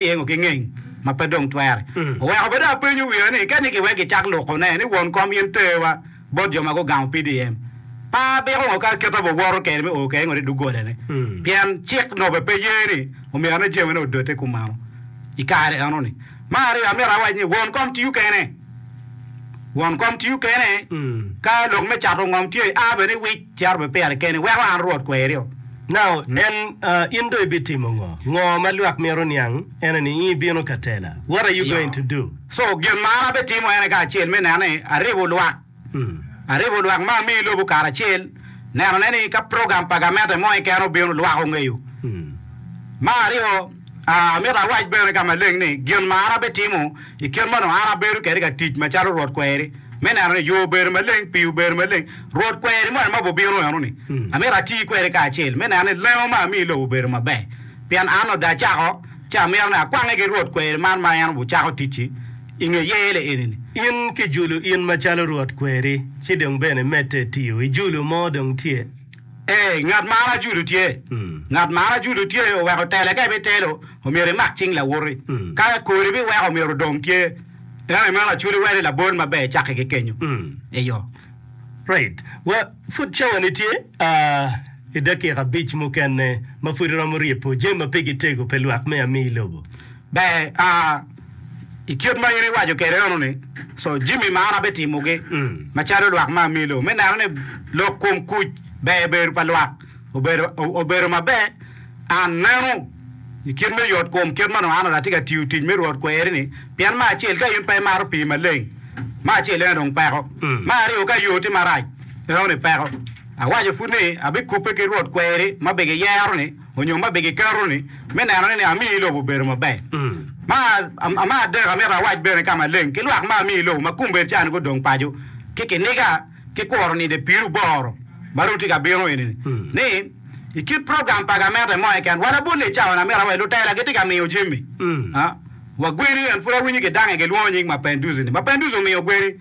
yengo ki ngeng ma pe dong twere. Oweko bene apenyo wiya ni keni kiwek gicak lukone ni won kom in terwa bot jo ma gugamo PDM, pe abiko ngo ka aketa bot woto kede me oo kede ngo i dogolane pien cik nobbe pe ye ni omyero ane jamine odote kumalo i kare enoni. Me aryo amito awac ni won kom tiyo kene, won kom tiyo kene ka lok me cato ngom tye, a bene i wic. Cito bed pire keni, weko an Rwot kwerio. Nao, nen, in dong ibitimo ngo? Ngo ma lwak mito niang ene ni in ibino ka tela? What are you going to do? So, gin ma an abitimo ene kacel me neno ni aribo lwak, aribo lwak ma amiyo lobo karacel, nenone ni ka program pa gamente mo keken obino, lwak ongeyo. Ma aryo. Amito awac bene ka maleng ni gin ma an abitimo i kit ma onongo an abedo kwede ka tic macalo Rwot kweri, me neno ni yo obedo maleng, pii obedo maleng. Rwot kweri moni ma bubino enoni, amito ati kwede kacel me neno ni lengo ma amiyo i lobo obedo maber. Pien an onongo dacako ci amito ni akwange ki Rwot kweri man ma en ocako ticci i nge yele eni-ni. In kijulu in macalo Rwot kweri, ci dong bene medde tiyo. Ijulu mo dong tye, Ee, ngat ma an ajulu tye. Ngat ma an ajulu tye oweko tele ka ibitelo, omyero imak cing lawoti. Ka kori ibiweko omyero odong tye. Ento i meno aculi weri labol maber icaki ki kenyo. Eyo. Right. Wa, pud cawani tye aa, i dakika abic mukene ma pud iromo ryepo jami ma pe gitego pe lwak me ami i lobo. Ber, aa, I kit ma in iwaco kwede eno-ni, co jami ma an abitimogi macalo lwak ma amiyo lok me neno ni lok kom kuc ber i bedo pa lwak obedo maber. An neno i kit me yot kom kit ma nongo an adatye ka tiyo tic me Rwot kweri-ni, pien me acel ka in pe imato pii maleng, me acel eno dong peko. Me aryo ka yo tye marac, enoni peko. Awaco pud ni abikubbe ki Rwot kweri ma bigiyero-ni. Onyo ma bigiketo ni me neno ni amiyo lobo obedo maber. Ma ma adek amito awac bene ka maleng ki lwak ma amiyo lobo ma kumber cani gudong paco ki kiniga ki kuro nide piru boro ma ru tye ka bino eni ni ni i kit program pa gamente mo keken wa labol ni cawa ni amito awac lutela gitye ka miyo Jimmy wa gweni en pud awinyo ki dange gilwongo nying Mapenduzi ni Mapenduzi omiyo gweni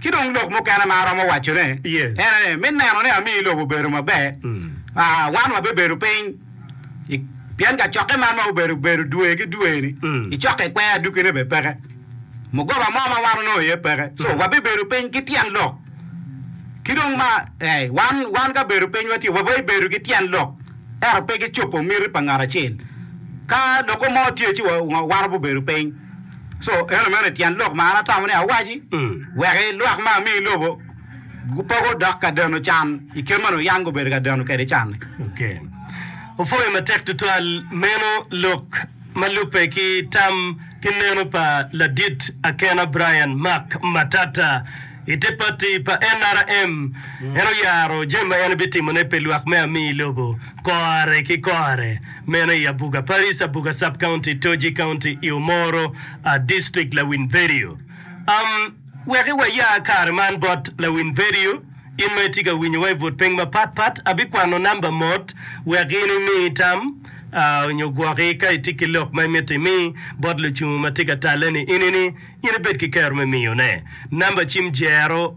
Ci dong lok mukene ma aromo wacone en aye, me neno ni amiyo lobo bedo maber, wan wabibedo piny pien kacokke man ma obedo bedo dwe ki dwe-ni, icokke kwer adukkine bene peke, mugoba mo ma wan onongo iye peke. So, wabibedo piny ki tyen lok. Ki dong ma, ee, wan, wan ka bedo pinywa tye, wabibedo ki tyen lok, ento pe ki cobo miti pa ngat acel. Ka lokke mo tye ci wa, wa, wan wabibedo piny. Co, eno mene tyen lok ma an atamo ni awaci, wek i lwak ma ami i lobo gupoko dok ka deno can i kit ma nongo yam gubedo ka deno kede can-ni. Ok. Opwoyo matek tutwal meno lok ma lubbe ki tam ki neno pa ladit akena Brian Mark Matata i te pati pa NRM. En oyaro jami ma en bitimone pi lwak me ami i lobo. Kore ki kore, meno i Abuga Paris, Abuga Sub-County, Toji County, i Omoro District, Lawiny Vedio. Am, weki waya kare man bot Lawiny Vedio. In ma itye ka winyowa i but piny mapat pat, abikwano namba mot wek in imi tam nyo gwoki ka itye ki lok ma imito imi bot lucungu ma tye ka talle-ni. In-ni in ibed ki kero me miyone namba cim 0.